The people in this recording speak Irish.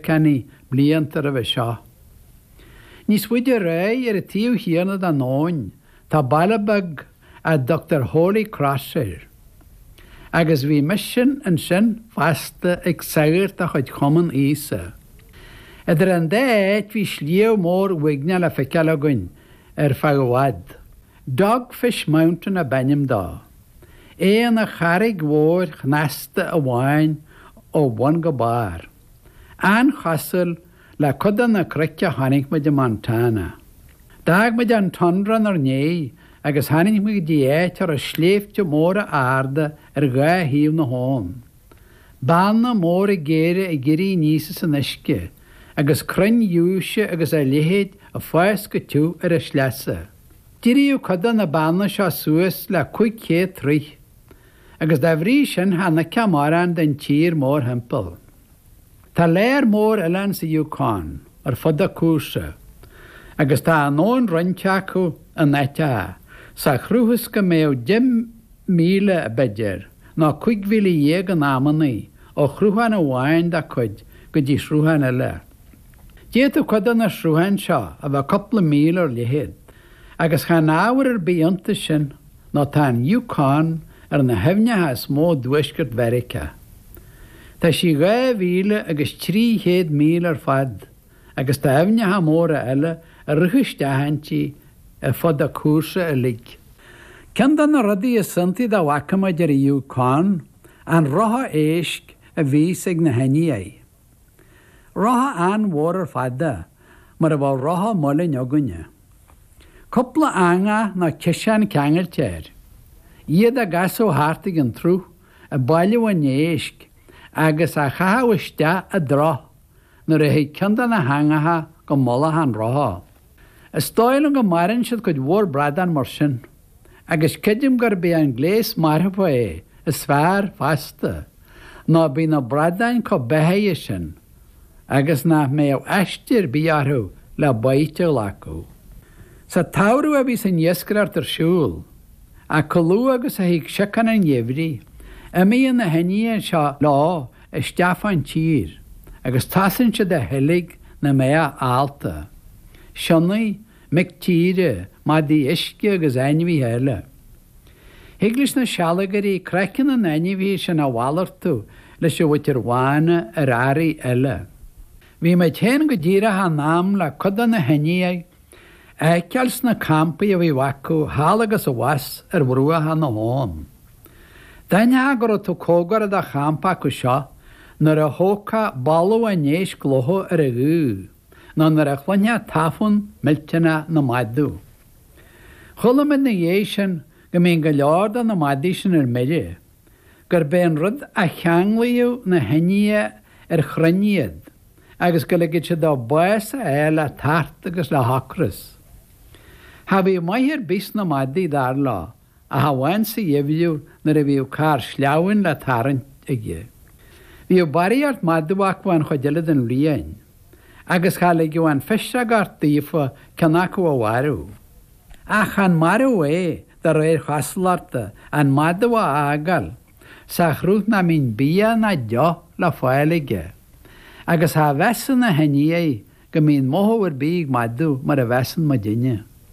Carney blianta roimhe seo. Níos faide ar aghaidh ar an taobh chéanna den abhainn tá baile beag a dtugtar Holy Cross air, agus bhí misean ansin fosta ag sagairt de chuid Chumann Íosa. Idir an dá áit bhí sliabh mór uaigneach le feiceáil againn ar feadh i bhfad. Dogfish Mountain ab ainm dó. É ina charraig mhóir chneasta amháin ó bhun go barr. An-chosúil le cuid de na cnoic a chonaic muid i Montana. D'fhág muid an tundra inár ndiaidh agus tháinig muid go dtí áit a raibh sléibhte móra arda ar dhá thaobh na habhann, beanna móra géara ag éirí aníos as an uisce agus crainn ghiúise agus a leithéid ag fás go tiubh ar a sleasa. D'éireodh cuid de na beanna seo suas le 500 troigh. agus dá bhrí sin chan fheicfeá mórán den tír mórthimpeall. Tá lear mór oileán sa Yukon ar fud a cúrsa, agus tá an abhainn roinnte acu in áiteacha, sa chruth is go mbeadh deich míle, b'fheidir, nó cúig mhíle dhéag in amannaí, ó shruthán amháin dá cuid go dtí sruthán eile. D'fhéadfadh cuid de na srutháin seo a bheith cupla míle ar leithead, agus chan ábhar ar bith iontas sin, nó tá an Yukon ar na haibhneacha is mó i dTuaisceart Mheiriceá. Tá sí dhá mhíle agus trí chéad míle ar fad agus tá aibhneacha móra eile ag rith isteach inti ar fud a cúrsa uilig. Ceann de na rudaí is iontaí dá bhfaca muid ar an Yukon an rotha éisc a bhíos ag na hIndiaigh. Rotha an-mhór ar fad é, mar a bheadh rotha muilinn againne. Cúpla eanga nó ciseán ceangailte air. Iad á gcasadh thart ag an tsruth, ag bailiú an éisc agus á chaitheamh isteach i dtrach nuair a thig ceann de na heangacha go mullach an rotha. Is dóigh liom go maraíonn siad cuid mhór bradán mar sin. agus creidim gurb é an gléas marfa é is fearr fosta, nó bíonn na bradáin chomh beathaithe sin agus nach mbeadh aiste ar bith orthu le baoite a ghlacadh. Sa tsamhradh a bhíos an iascaireacht ar siúl, ach chomh luath agus a thig siocán an gheimhridh, imíonn na hIndiaigh seo leo isteach fán tír agus tosaíonn siad a sheilg na mbeathach allta, sionnaigh, mic tíre, madaí uisce agus ainmhithe eile. Thig leis na sealgairí craiceann na n-ainmhithe sin a mhalartú leis an mhuintir bhána ar earraí eile. Bhí muid féin go díreach in am le cuid de na hIndiaigh a fheiceáil sna campaí a bhí acu thall agus abhus ar bhruacha na habhann. D'aithneofá go raibh tú comhgarach do champa acu seo nuair a thógfá boladh an éisc lofa ar an ghaoth. nó nuair a chluinfeá tafann millteanach na madadh. Chuala muid ina dhiaidh sin go mbíonn go leor de na madaí sin ar mire, gurb é an rud a cheanglaíodh na hIndiaigh ar chrainn iad agus go ligfeadh siad dóibh bás a fháil le tart agus le hocras. Cha bhíodh maith ar bith sna madaí, dar leo, ach amháin sa gheimhreadh nuair a bhíodh carr sleamhnáin le tarraingt aige. Bhíodh barraíocht madadh acu an chuid eile den bhliain, agus cha ligeadh an phisreogacht daofa ceann acu a mharú. Ach chan marú é, de réir chosúlachta, an madadh a fhágáil sa chruth nach mbíonn bia ná deoch le fáil aige, agus cha mheasann na hIndiaigh go mbíonn mothú ar bith ag madadh mar a mheasann muidinne.